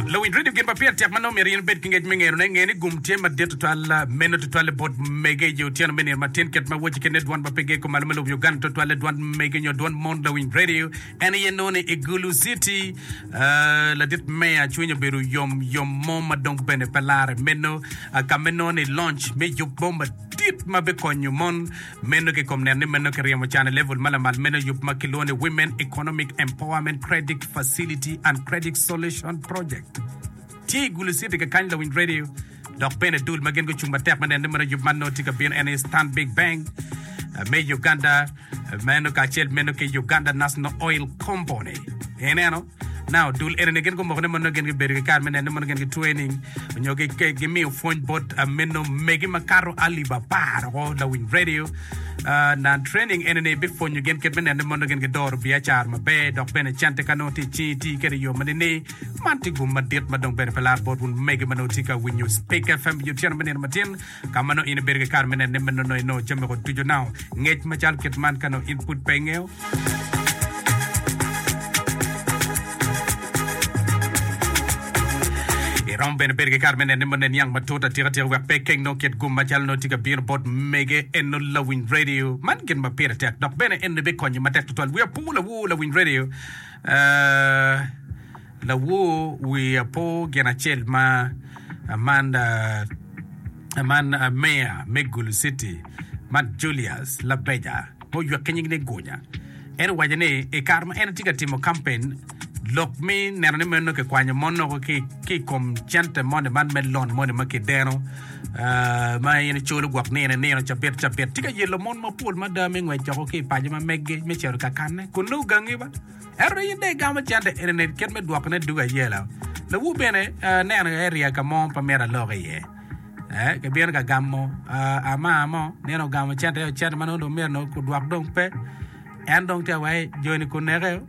Luwinj redio gin ma pire tek ma nongo myero in ibed ki ngec me ngerone. Nge ni gum tye madit tutwal meno tutwalle bot mege i otyeno me nino matin. Kit ma wacci kene dwan ma pe geko malo me lobo Uganda tutwalle dwan mege nyo dwan mon lawinj redio en aye nongo ni i Gulu City. Ah, ladit meya cwiny obedo yom yom mo ma dong bene pe lare meno ah, ka me nongo ni launch me yub mo madit ma bikonyo mon Meno ki kom neno ni meno ki ryemo can i level ma lamal meno yub ma ki lwongo ni Women Economic Empowerment Credit Facility and Credit Solution Project tye i gulu citi ki kany lawiny radio dok bene dul ma gin gucung matek me neno ni meno yub man nongo tye ka bino en aye Stanbic Bank me Uganda meno kacel meno ki Uganda National Oil Compony ineno na odul eni ni gin gumoko ni mono gin gibedo ki kare me neno ni mono gin gi training onyo gi gi- gimiyo pwony bot ah, meno megi makato alip apar oko lawiny radio Ah, na training eni ni bipwonyo gin kit me neno ni mono gin gidoro biacara maber dok bene cente ka nongo tye i cingi iti kwede i yo ma nini man tye gum madit ma dong bene pe lar bot wun mege ma nongo tye ka winyo Speke FM i otyeno me nino matin Ka ma nongo in ibedo ki kare me nenone ma nonoi nongo jami woko ducu nao ngec macalo kit man ka nongo in pud pe ingeyo. I romo bene bedo ki kare me nenone ma onen yang matut atika tika wek pe ikeng nongo kit gum macalo nongo tye ka bino bot mege eno lawiny radio. Man gin ma pire tek dok bene enoni bikonyi matek tutwal. Wiya pur lawu lawiny radio. Uh, Lawor wer apo gin acel ma man meya me Gulu City ma Julius Labeja ma oywe ki nying ni Gunya en owaco ni i kare ma en tye ka timo kampen lok me neno ni meno kikwanyo mon noko ki i kom cente moni man me lon moni ma kideno ma in icolo gwok nino nino cabit cabit tye ka yelo mon mapol mada me ngwec doko ki i paco ma mege me cito kakane kun nongo gangi ba. Ento in dong igamo cente eni ni kit me dwoko ne dug ayela. Lawu bene neno aye riya ka mo pe mito alok iye. Eh, ki bino ka gamo ah, ama mo, nino ogamo cente yo, cente ma nongo dong mito nongo kudwok dong pe. En dong te wai joni kuneke yo.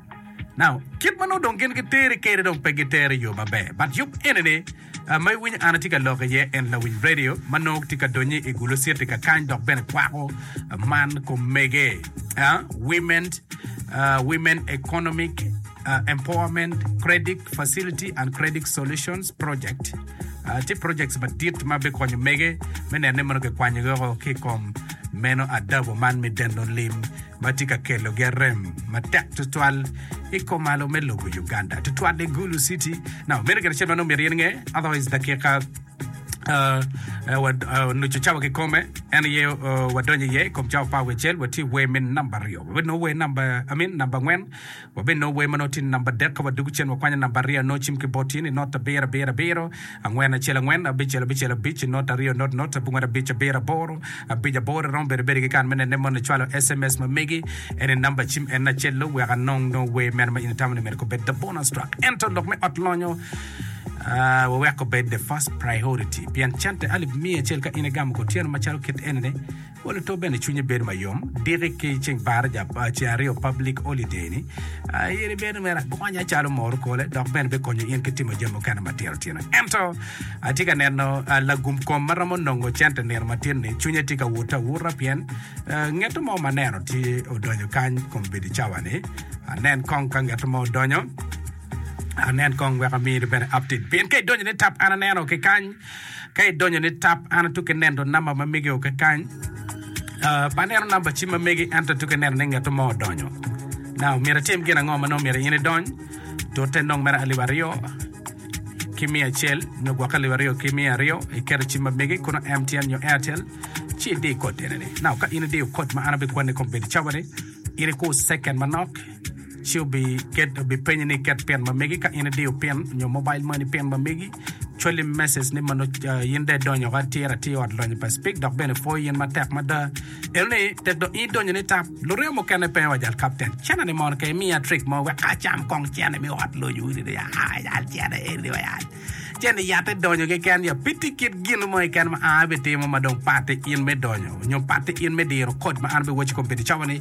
Now, kit ma nongo dong gin giteri kede dong pe giteri yo maber. But yub eni ni, Ma iwinyo an atye ka lok iye en lawic redio ma nongo tye ka donyo i gulo citi ka kany dok bene kwako man komege, Women, Women Economic Empowerment Credit Facility and Credit Solutions Project. Tye projects madit ma bikonyo mege me neno ni mono kikwanyogi woko ki i kom meno adabu man me deno lim. ma tye ka kelogi arem matek tutwal i komalo me lobo Uganda, tutwal i Gulu City. Now, meno gin acel ma nongo myero in inge, otherwise dakika Uh, uh, wad- uh, nucu cawa ki kome en ye uh, wadonyo iye i kom cawa pa wecel watye wer me namba aryo weno wer namba amin namba angwen Wabino wer ma nongo tye ni namba adek ka wadwogo cen wakwanyo namba aryo nongo cim ki bot tye ni not abiro abiro abiro angwen acel angwen abicel abicel abic ki not aryo not not abongwen abic abiro aboro abic aboro iromo bedo abeda ki kare me nene moni icwalo sms ma megi en ni namba cim en ni acel-lu wek anong nongo wer meno ma in itamo ni myero kubed the bonus track ento lok me ot lonyo ah, wawek obed the first priority pien cente alip miya acel ka in igamo kutyeno macalo kit eni ni Oli to bene cwinye bedo ma yom diki ki ceng Baraja pa ceng aryo public holiday ni. Ah, in ibedo mere agonya calo moro kole dok bene bikonyo in ki timo jami mukene matino tino. Ento atye ka neno ah, lagum kom ma romo nongo cente nino matin ni cwinye tye ka wute awuta pien ah, ngeto mo ma aneno tye odonyo kany kom bedi cawa ni. Anen kong ka ngeto mo odonyo. Anen kong wek amini bene update pien ka idonyo ni tap an aneno ki kany Ka idonyo ni tab, an atuko ineno namba ma mege o kakany. Pe aneno namba cim ma mege, ento atuko ineno ni ngeto mo odonyo. Now, myero itim gin ango ma nongo myero in idony? Tute nongo mere alip aryo ki miya acel nyo gwokke alip aryo ki miya aryo, iketo cim ma mege kono MTN nyo Airtel, ci idi kod enini. Now, ka in idiyo kod ma an abikwanni kong bedi cawa ni, in ikur second manok, Ci obipenyi ni iket pin ma megi ka in idiyo pin nyo mobile money pin ma megi. Cwali message ni ma nongo ah, in dong idonyo woko atir atir i ot lonyo pa Speke dok bene pwoyo in matek mada. Eno ni tek dong in idonyo ni tap. Luryo mukene penyo wa jal kapten, Cene ni mono kong imiya trick mo wek acam kong cene me ot lonyo wun ni ah, ah, yal cene eni wa yal. Cene yatte donyo keken ya pitti kit gin mo keken ma an abitimo ma dong patti in me donyo nyo patti in me diro kod ma an abiwaco kong pire cawa ni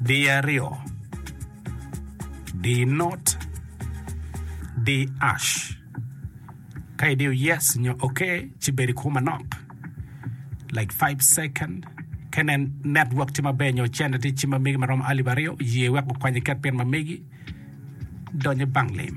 Di aryo. Di not. Di ash. Ka idiyo yes nyo okay ci bedo i kwo manok like five second ka inen network tye maber nyo cene tye cim ma megi ma romo alip aryo ye wek okwanyi iket pin ma megi donyo i bank lim.